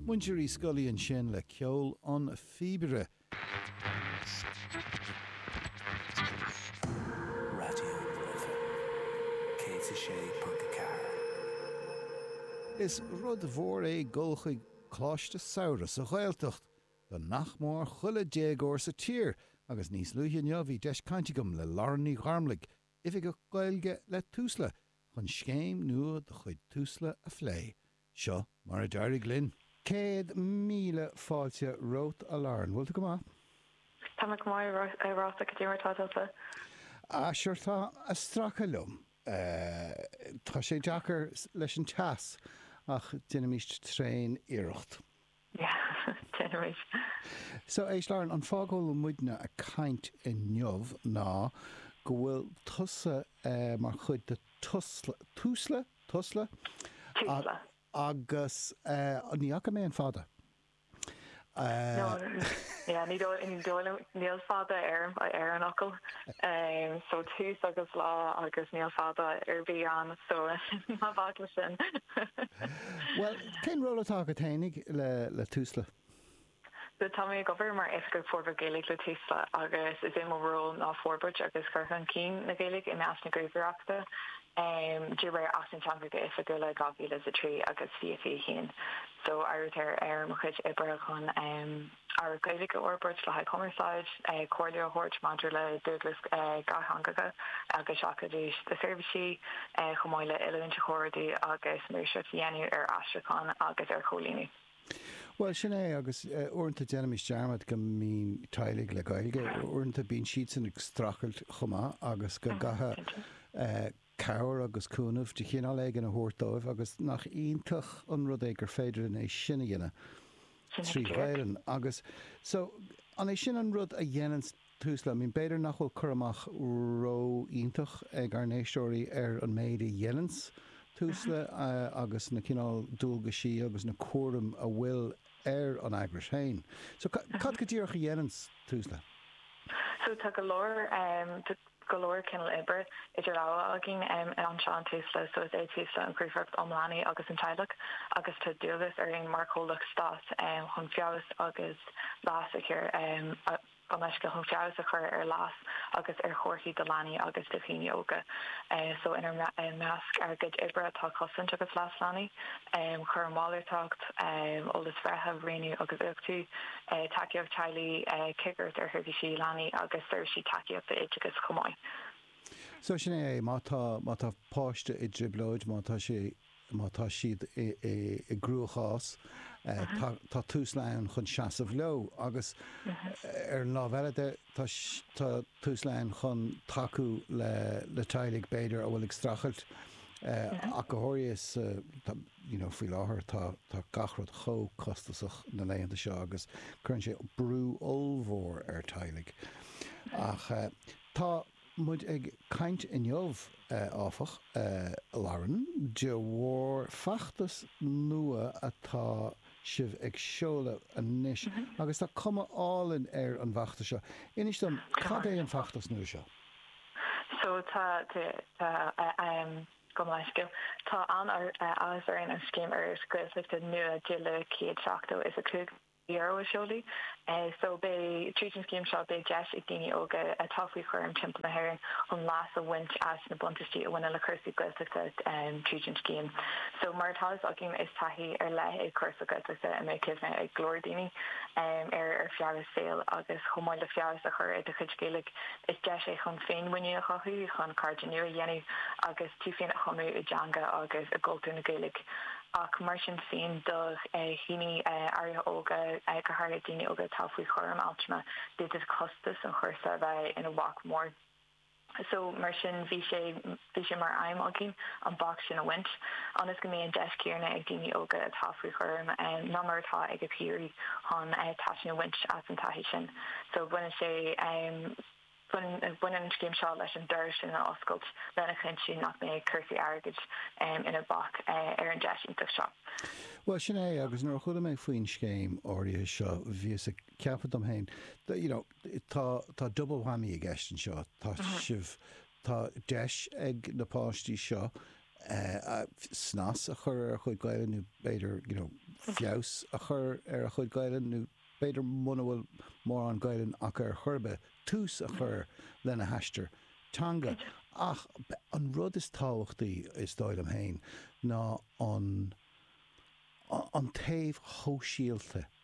Muintir Uí Scolaí ansin le ceol an phíobaire. Raidió na Life 106.4. Is rud mhór é dul chuig coláiste samhraidh sa Ghaeltacht do nach mór chuile déagóir sa tír agus níos luaithe inniu bhí deis cainte agam le Lauren Ní Gharmlaigh, Oifigeach Gaeilge le Tusla chun scéim nua de chuid Tusla a phlé. Seo mar a d'éirigh linn. Céad míle fáilte romhat, a Lauren. Bhfuil tú go maith? Tá mé go maith, a Rossa. Cad é mar atá tusa? Ah, sure, tá ag stracadh liom. Tá sé deacair leis an teas ach déanaimis tréaniarracht. So, éist Lauren, an fáth go bhfuil muidne a' caint inniu ná go bhfuil tusa mar chuid de tusla, túsla? tusla? Túsla. agus ní fhaca mé an fada. No, yeah, ní dóigh, ní dóigh liom, níl fada ar an, ar an fhocal. So, tús agus lá agus níl fada ar bith ann, so, ná bac leis sin. Well. Cén ról atá agat fhéinig le Tusla? Sea, tá mé ag obair mar Oifigeach Forbartha Gaeilge le Tusla agus is é mo ról ná forbairt agus cur chun cinn na Gaeilge i measc na Gníomhaireachta de réir Acht na dTeangacha Oifigiúla 2003 agus 2021. So, áirítear ar mo chuid oibre chun. ábhar as Gaeilge a fhorbairt le haghaidh cumarsáid, comhairle a thabhairt maidir le dualgais dhátheangacha agus seachadadh na seirbhísí, chomh maith le oiliúint a chomhordú agus maoirseacht a dhéanamh ar aistriúchán agus ar chomhlíonadh. Bhuel, sin é, agus uaireanta déanaimis dearmad go mbíonn teaghlaigh le Gaeilge, uaireanta bíonn siadsan ag streachailt chomh maith agus go gcaithfidh cabhair agus cúnamh de chineál éigin a thabhairt dóibh agus nach iontach an rud é gur féidir linn é sin a dhéanamh trí Ghaelainn. Sin é go díreach. agus so an é sin an rud a dhéananns tús le, I mean b'fhéidir nach bhfuil cur amach ró-iontach ag ár n-éisteoirí ar an méid a dhéananns Tusla agus na cineál dualgaisí agus na cúraim a bhfuil ar an eagrais féin. So cad go díreach a dhéananns tús le? So tá go leor, tá. go leor cineál oibre idir lámha againn anseo, in Tusla so is é Tusla an Ghníomhaireacht um Leanaí agus an Teaghlach agus tá dualgas orainn mar chomhlacht stáit chun feabhas agus leas a chur gabh mo leithscéal chun feabhas a chur ar leas agus ar thorthaí do leanaí agus do dhaoine óga so inár measc ár gcuid oibre atá cosaint agus leas leanaí, cúram malartach, eolas breithe, rianú agus uchtú. tacaíocht teaghlaigh, cigireacht ar sheirbhísí leanaí agus seirbhísí tacaíochta oideachais chomh maith. So sin é é, má tá, má tá páiste i dtrioblóid, má tá sé, má tá siad i, i, i gcruachás, tá, tá Tusla ann chun seasamh leo agus ar an lámh eile de, tá, tá Tusla ann chun tacú le, le teaghlaigh b'fhéidir a bhfuil ag streachailt, ach go háirithe is. you know faoi láthair tá tá gach rud chomh costasach na laethanta seo agus cuireann sé brú ollmhór ar teaghlaigh ach tá muid ag caint inniu áfach Lauren de bharr feachtas nua atá sibh ag seoladh anois agus tá cuma álainn ar an bhfeachtas seo inis dom cad é an feachtas nua seo? So tá tá ehm. an-mhaith le scéal. Tá an-áthas orainn an scéim sparánachta Gaeltachta nua de luach €175 a sheoladh so. Beidh, tríd an scéim seo, beidh deis ag daoine óga atá faoi chúram timpeall na hÉireann chun leas a bhaint as na buntaistí a bhaineann le cúrsaí Gaeltachta tríd an scéim so. Mar atá fhios againn, is taithí ar leith é cúrsa Gaeltachta a mbeidh cuimhne ag go leor daoine air ar feadh a saoil agus chomh maith le feabhas a chur ar do chuid Gaeilge. Is deis é chun féinmhuinín a chothú, chun cairde nua a dhéanamh agus tú féin a thumadh i dteanga agus i gcultúr na Gaeilge. Ach mar sin féin, do dhaoine áirithe óga, go háirithe daoine óga atá faoi chúram altrama, d'fhéadfadh costas an chúrsa a bheith ina bhac mór. So, mar sin, bhí sé. Bhí sé mar aidhm againn an bac sin a bhaint, ionas go mbeidh an deis céanna ag daoine óga atá faoi chúram ná mar atá ag a bpiaraí chun taitneamh a bhaint as an taithí sin. So baineann sé, baineann an scéim seo leis an doras sin a oscailt lena chinntiú nach mbeidh cúrsaí airgid ina bac ar an deis iontach seo. Bhuel, sin é, agus nuair a chuala mé faoin scéim áirithe seo, bhíos ag ceapadh dom féin, you know, tá, tá double whammy i gceist anseo, tá sibh, Tá deis ag na páistí seo snas a chur ar a chuid Gaelainne nó b'fhéidir, you know, feabhas a chur ar a chuid Gaelainne nó b'fhéidir muna bhfuil mórán Gaelainne acu ar chor ar bith, tús a chur lena haistear teanga. Ach an rud is tábhachtaí, is dóigh liom féin, ná an taobh shóisialta.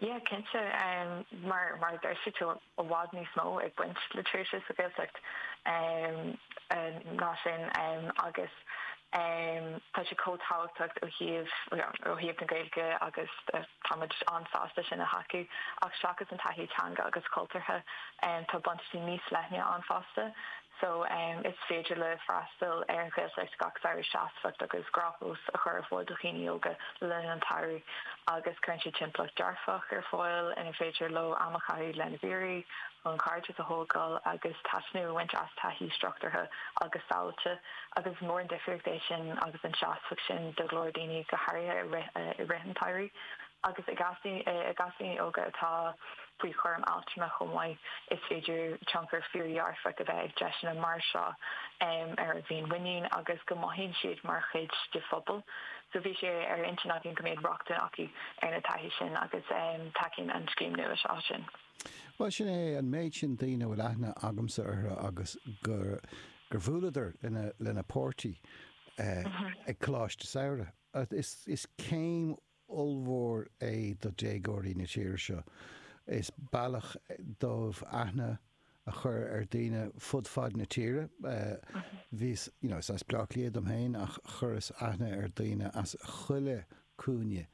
Yeah, cinnte, mar a deir tú, tá, i bhfad níos mó ag baint le tréimhse sa Ghaeltacht ná sin agus tá sé chomh tábhachtach ó thaobh na Gaeilge agus táimid an-sásta sin a thacú ach seachas an taithí teanga agus cultúrtha tá buntáistí níos leithne ann fosta. so, is féidir leo freastal ar an Ghaeltacht gach samhradh seasmhacht agus gnáthamh a chur ar fáil do dhaoine óga le linn an tsamhraidh agus cuireann siad timpeallacht dearfach ar fáil inar féidir leo am a chaitheamh lena bpiaraí chun cairdeas a thógáil agus taitneamh a bhaint as taithí struchtúrtha agus sábháilte agus is mór an difríocht é sin agus an seasmhacht sin do go leor daoine go háirithe i rith an tsamhraidh agus i gcás daoine óga atá faoi chúram altrama chomh maith. Is féidir tionchar fíordhearfach a bheith ag deiseanna mar seo ar a bhféinmhuinín agus go mothaíonn siad mar chuid de phobal. So bhí sé ar intinn againn go mbeadh rochtain acu ar na taithí sin agus tacaíonn an scéim nua seo sin. Bhuel, sin é an méid sin daoine a bhfuil aithne agamsa orthu agus gur bhuaileadar lena páirtí ag coláiste samhraidh. Is céim ollmhór é do dhéagóirí na tíre seo. Is bealach dóibh aithne a chur ar dhaoine fud fad na tíre. Bhíos, you know, is as Bleá Cliath dom féin ach chuireas aithne ar dhaoine as chuile chúinne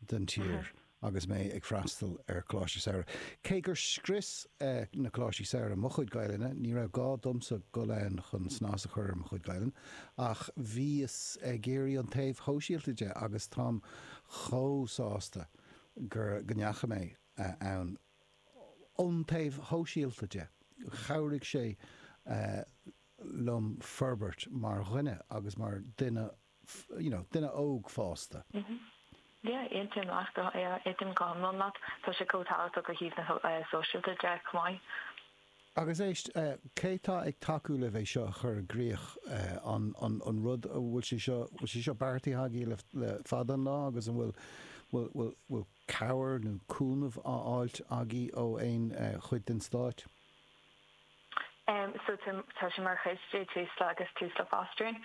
den tír agus mé ag freastal ar Choláiste Samhraidh. Cé gur scrios na Coláistí Samhraidh mo chuid Gaelainne, ní raibh gá domsa goil ann chun snas a chur ar mo chuid Gaelainne. ach bhíos ag iarraidh an taobh shóisialta de agus táim chomh sásta gur, go ndeachaigh mé ann. Ón taobh shóisialta de, chabhraigh sé liom forbairt mar dhuine agus mar duine, you know, duine óg fásta. M, Yeah, aontaím leat, go, yeah, aontaím go hiomlán leat. Tá sé chomh tábhachtach ó thaobh na sóisialta de chomh maith. Agus éist, cé tá ag tacú libh é seo a chur i gcrích? An an rud, an bhfuil sé seo, bhfuil sé seo beartaithe agaibh le fada an lá agus an bhfuil, bhfuil, bhfuil, bhfuil cabhair nó cúnamh á fháilt agaibh ó aon chuid den stáit? So tá, tá sé mar chuid de Tusla agus Tusla Fostering.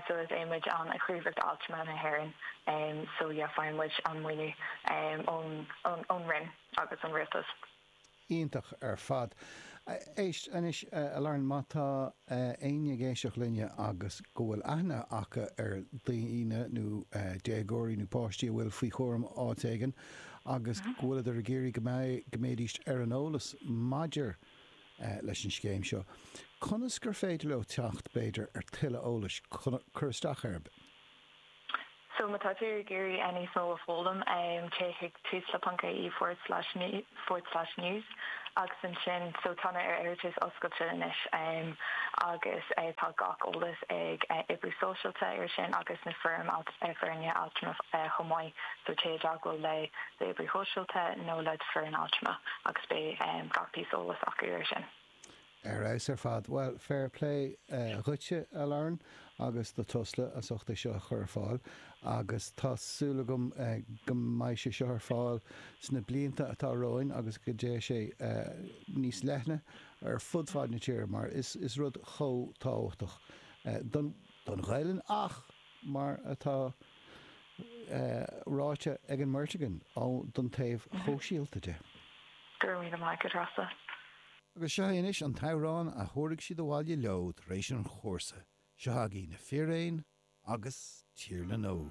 So is muid an Ghníomhaireacht Altrama na hÉireann. So yeah, faigheann muid an maoiniú ón, ón, ón Roinn agus ón Rialtas. iontach ar fad. Éist anois, a Lauren, má tá éinne ag éisteacht linne agus go bhfuil aithne acu ar dhaoine nó déagóirí nó páistí a bhfuil faoi chúram áit éigin agus go bhfuileadar ag iarraidh go mbeidís ar an eolas maidir leis an scéim seo, conas gur féidir leo teacht, b'fhéidir, ar tuilleadh eolais, cur isteach air. So má tá tú ag iarraidh níos mó a foghlaim, téigh chuig Tusla ponc ie forward slash me forward slash news agus ansin, so tá na hiarratais oscailte anois agus tá gach eolas ag oibrí sóisialta ar sin agus na foirm foirne altrama chomh maith, so téigh i dteagmháil le d'oibrí shóisialta nó le d'foireann altrama agus beidh gach píosa eolais acu ar sin. Ar fheabhas ar fad. Bhuel, fair plé dhuitse, a Lauren, agus do Tusla as ucht é seo a chur ar fáil. Agus tá súil agam go mbeidh sé seo ar fáil sna blianta atá romhainn agus go dté sé níos leithne ar fud fad na tíre mar is rud chomh tábhachtach don Ghaelainn ach, mar atá ráite ag an mbeirt againn, don taobh shóisialta de. Go raibh míle maith agat, Rossa. Agus seo é anois an t-amhrán a thabharfaidh siad abhaile leo tar éis an chúrsa. Seo chugainn Na Fíréin agus Tír na nÓg.